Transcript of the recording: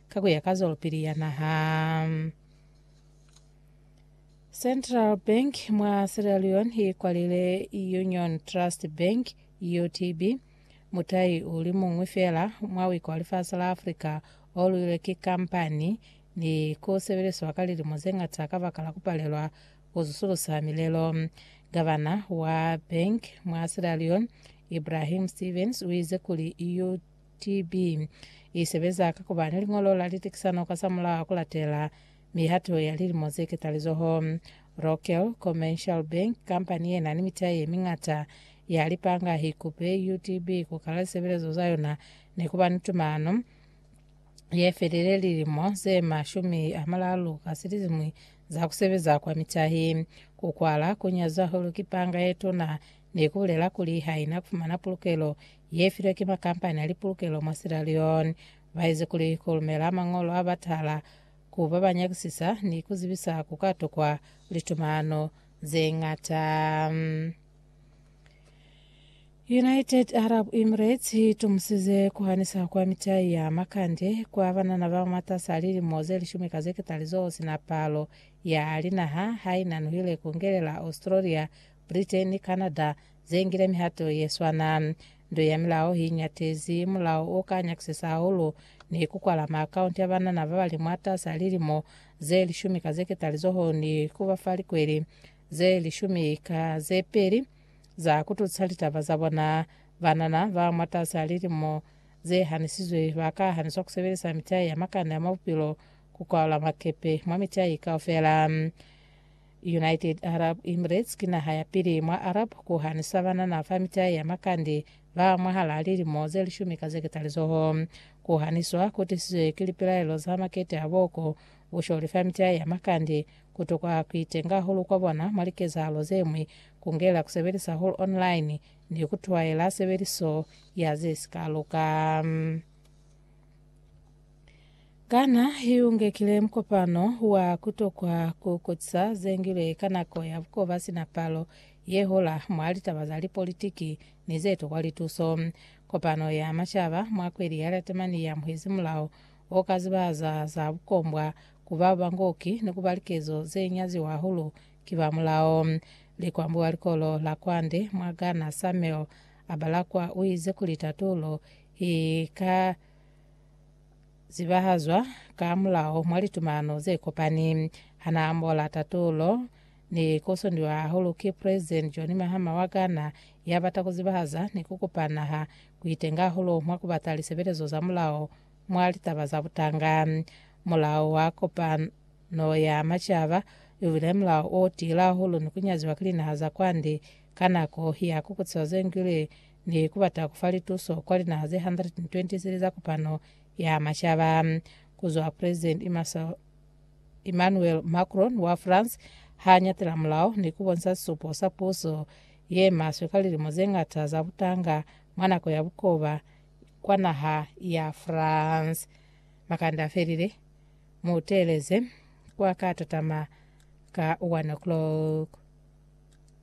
ka ku ya ka zwalopili ya naha. Central Bank mwa Sierra Leone i kwalile Union Trust Bank, UTB, mutai u li muñwi fela mwa wika wa lifasi la Afrika o luilwe ki kampani ni ku sebeliswa ka lilimo ze ngata ka baka la ku palelwa ku zusulusa milelo. Gavana wa bank mwa Sierra Leone, Ibrahim Stevens, u ize kuli UTB TB. I sebeza ka ku ba ni liñolo la litekisano ka za mulao ku latela mihato ya lilimo ze ketalizoho. Rokel Commercial Bank, kampani ye na ni mitai ye miñata ya lipanga, i kupe UTB ku kala lisebelezo za yona ni ku ba ni tumano ye felile lilimo ze mashumi a malalu ka silizimi za ku sebeza kwa mitahi. Ku kwala ku nyaza hulu ki panga ye tuna ni ku bulela kuli ha i na ku fumana pulukelo ye filwe ki makampani a lipulukelo mwa Sierra Leone, ba ezi kuli ku lumela mañolo a batala ku ba ba nyakisisa ni ku zibisa ku ka tokwa litumano ze ñata. United Arab Emirates i tumusize ku hanisa kwa mitai ya makande kwa banana ba mwatas'a lilimo ze lishumi ka ze ketali z'o si na palo ya linaha ha i nanuhile ku ngelela Australia, Britain, Canada ze ngile mihato ye swana. Nto ya milao hi ñatezi mulao o ka nyakisisa hahulu ni ku kwala maakaunti a banana ba ba li mwatas'a lilimo ze lishumi ka zeketali zoho ni ku ba fa likweli ze lishumi ka ze peli za ku tusa litaba za bona. Banana ba mwatas'a lilimo ze hanisizwe ba ka haniswa ku sebelisa mitai ya makande a mwa bupilo ku kwaula makepe mwa mitai kaufela. United Arab Emirates ki naha ya pili mwa Arab ku hanisa banana fa mita ya makande ba mwahal'a lilimo ze lishumi ka ze ketalizoho. Ku haniswa ku tisizwe ki lipilaelo za makete a boko, busholi fa mita ya makande, ku tokwa ku itenga hahulu kwa bona mwa likezahalo ze ñwi, ku ngela ku sebelisa hahulu online, ni ku twaela sebeliso ya ze si ka luka. Kana hi ungekile mukopano wa kutokwa ku kutisa zengilwe ka nako ya bukoba sina palo ye hola mwa litaba za lipolitiki ni ze tokwa lituso? Kopano ya Macaba mwa kweli ya Latemani ya muhezi mulao o ka zibahaza za bukombwa ku ba bangoki ni kuba likezo ze nyaziwa hahulu ki ba mulao. Likwambi wa likolo la kwande mwa Ghana Samuel Abalakwa uize kuli tatulo i ka zibahazwa ka mulao mwa litumalano ze kopani. Ha na ambola tatulo, ni kosondiwa hahulu ki President John Mahama wa Ghana, ya bata ku zibahaza ni ku kupa naha ku itenga hahulu mwa ku bata lisebelezo za mulao mwa litaba za butanga. Mulao wa Kopano ya Macaba u bile mulao o tiile hahulu ni ku nyaziwa ki linaha za kwande ka nako ya kukutsiwa ze ngwile ni ku bata ku fa lituso kwa linaha ze 123 za Kopano ya Macaba ku zwa Presidenti Emmanuel Macron wa France ha nyatela mulao ni ku bonisa sisupo sa puso ye maswe ka lilimo ze ñata za butanga mwa nako ya bukoba kwa naha ya France. Makande a felile. Mu teeleze kwa ka tatama ka 1 o'clock.